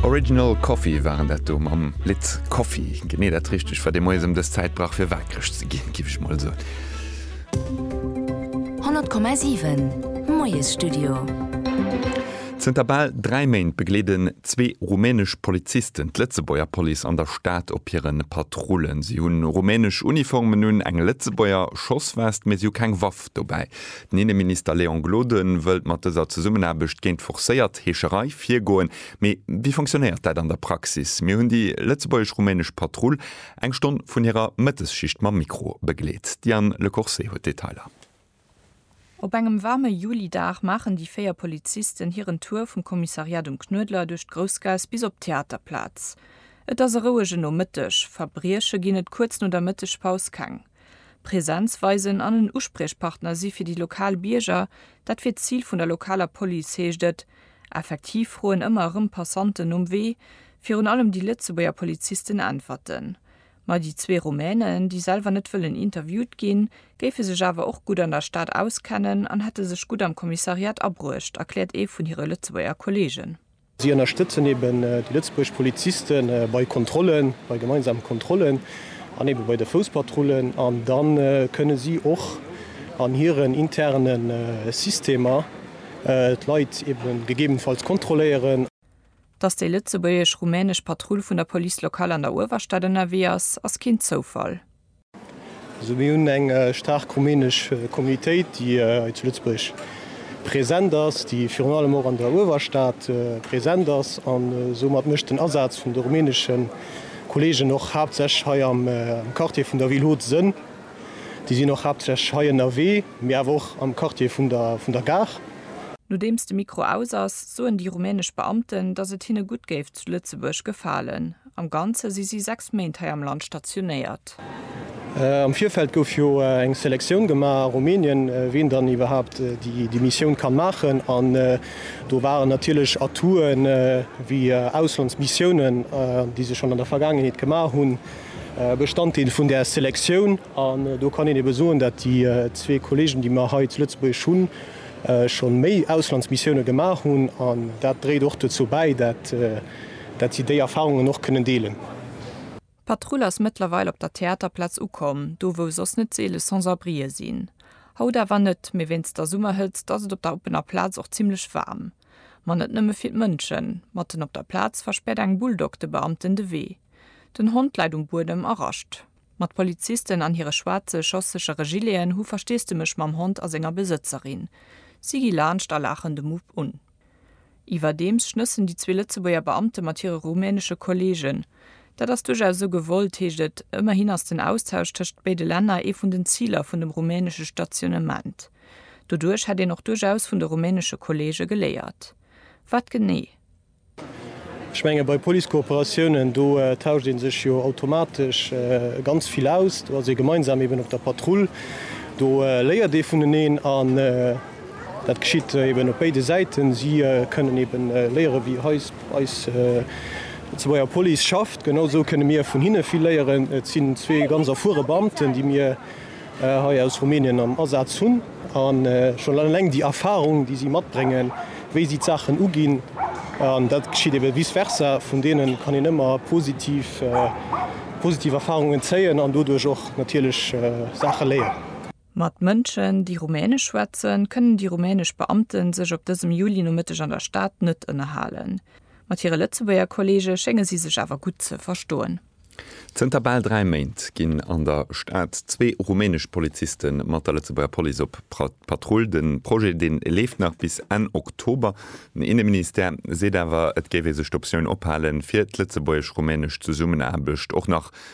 Original Coffee waren dat do mam Lidd Coffee. Genee dat richtegt war dee Moies ëm dës Zäit, brach fir waakreg ze ginn, giff ech mol soen. 100,7 Moiesstudio. Zënter bal dräi Méint begleeden zwee rumänesch Polizisten d'Lëtzebuerger Police an der Stad op hire Patrullen. Si hunn rumänesch Uniformen un, eng Lëtzebuerger Schosswest, mee si hu keng Waff. Dobäi, den Inneminister Léon Gloden wëllt mat dëser Zesummenaarbecht géint d'forcéiert Heescherei virgoen. Mee wéi fonctionnéiert dat an der Praxis? Mir hunn déi lëtzebuergesch-rumänesch Patrull eng Stonn vun hirer Mëttesschicht mam Mikro begleet. D'Diane Le Corset huet d'Detailer. Op engem waarme Julidag maachen déi véier Polizisten hiren Tour vum Kommissariat um Knuedler duerch d'Groussgaass bis op d'Theaterplaz. Et ass e rouege Nomëtteg, Verbrieche ginn et kuerz no der Mëttegpaus keng. Präsenz weisen an en Uspriechpartner si fir déi lokal Bierger, dat wier d'Zil vun der lokaler Police, heescht et. Effektiv froen ëmmer erëm Passanten nom Wee. Virun allem déi Lëtzebuerger Polizisten äntwerten. Ma déi zwee Rumänen, déi selwer net wëllen interviewt ginn, géife sech awer och gutt an der Stad auskennen an hätte sech gutt am Kommissariat abruecht, erkläert ee vun hire Lëtzebuerger Kolleegen. Si ënnerstëtzen eben déi lëtzebuerg Poliziste bei Kontrollen, bei gemeinsame Kontrollen an eben bei de Fouspatrullen. An da kënne si och an hiren interne Systemer d'Leit eben gegebenfalls kontrolléieren. Dass déi lëtzebuergesch-rumänesch Patrull vun der Police locale an der Uewerstad ënnerwee ass, ass keen Zoufall. Also mir hunn eng staark rumänesch Communautéit, déi hei zu Lëtzebuerg present ass, déi virun allem och an der Uewerstad present ass. An soumat mécht den Asaz vun de rumänesche Kolleegen och haaptsächlech hei am Quartier vun der Ville Haute Sënn. Déi sinn och haaptsächlech hei ënnerwee, mee awer och am Quartier vun der Gare. Nodeems de Mikro aus ass, soen déi rumänesch Beamten, datt et hinne gutt géif zu Lëtzebuerg gefalen. Am Ganze si si sechs Méint hei am Land stationéiert. Am Virfeld gouf jo eng Selektioun gemaach a Rumänien, wien dann iwwerhaapt déi Missioun kann maachen. An do waren natierlech Atouten, wéi Auslandsmissiounen, déi se schonn an der Vergaangenheet gemaach hunn, Bestanddeel vun där Selektioun. An do kann een ebe soen, datt déi zwee Kollegen, déi mer hei zu Lëtzebuerg hunn, scho méi Auslandsmissioune gemaach hunn. An dat dréit och dozou bäi, dat, dat si déi Erfarungen och kënnen deelen. D'Patrull ass mëttlerweil op der Theaterplaz ukomm, do wou soss net seele Sans-abrien sinn. Haut awer net, mee wéinst der Summerhëtzt ass et op der oppener Plaz och zimmlech waarm. Ma net nëmme fir d'Mënschen. Matten op der Plaz verspäert eng Bulldog de Beamten de Wee. Den Hond läit um Buedem a rascht. Ma d'Polizisten an hire schwaarze schosssechere Gileten hu Versteesdemech mam Hond a senger Besëtzerin. Si gi laanscht a laachen de Mupp un. Iwwerdeems schnëssen déi zwee Lëtzebuerger Beamte mat hire rumänesche Kolleegen. Dat ass duerchaus esou gewollt, heescht et. Ëmmerhin ass den Austausch tëscht béide Länner ee vun den Ziler vun dem rumänesche Stationnement. Doduerch hätt een och duerchaus vun de rumänesche Kolleege geléiert. Wat genee? Ech menge bei Police-Kooperatiounen, do tauscht ee sech jo automatesch ganz vill aus. Do ass ee gemeinsam eeben op der Patrull. Do léiert ee vuneneen. Dat geschitt eben op béide Säiten. Si kënnen eben léieren, wéi eis eis lëtzebuerger Police schafft. Genau esou kënne mir vun hinne vill léieren. Et sinn zwee ganz erfuere Beamten, déi mir hei aus Rumänien am Asaz hunn. A schonn eleng déi Erfarung, déi si matbréngen, wéi si d'Saachen uginn, an dat geschitt eben vice versa, vun deene kann een ëmmer positiv positiv Erfarungen zéien an doduerch och natierlech Saache léieren. Mat Mënschen, déi Rumänesch schwätzen, kënnen déi rumänesch Beamte sech op dësem Julinomëtteg an der Stad net ënnerhalen. Mat hire Lëtzebuerger Kolleege schénge si sech awer gutt ze verstoen. Zënter bal dräi Méint ginn an der Stad zwee rumänesch Poliziste mat der Lëtzebuerger Police op Patrull. De Projet dee leeft nach bis Enn Oktober. Den Inneministère seet awer, et géif ee sech d'Optioun ophalen, fir d'lëtzebuergesch-rumänesch Zesummenaarbecht och nach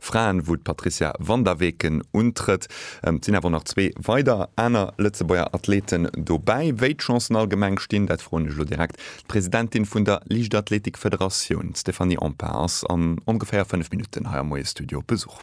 Fraen, wou d'Patrizia Van der Weken untrëtt. Et sinn awer och nach zwee weider aner Lëtzebuerger Athleten dobäi. Wéi d'Chancen allgemeng stinn, dat froen ech elo direkt d'Presidentin vun der Liichtathletikfederatioun, d'Stéphanie Empain ass an ongeféier 5 Minutten hei am Moie Studio op Besuch.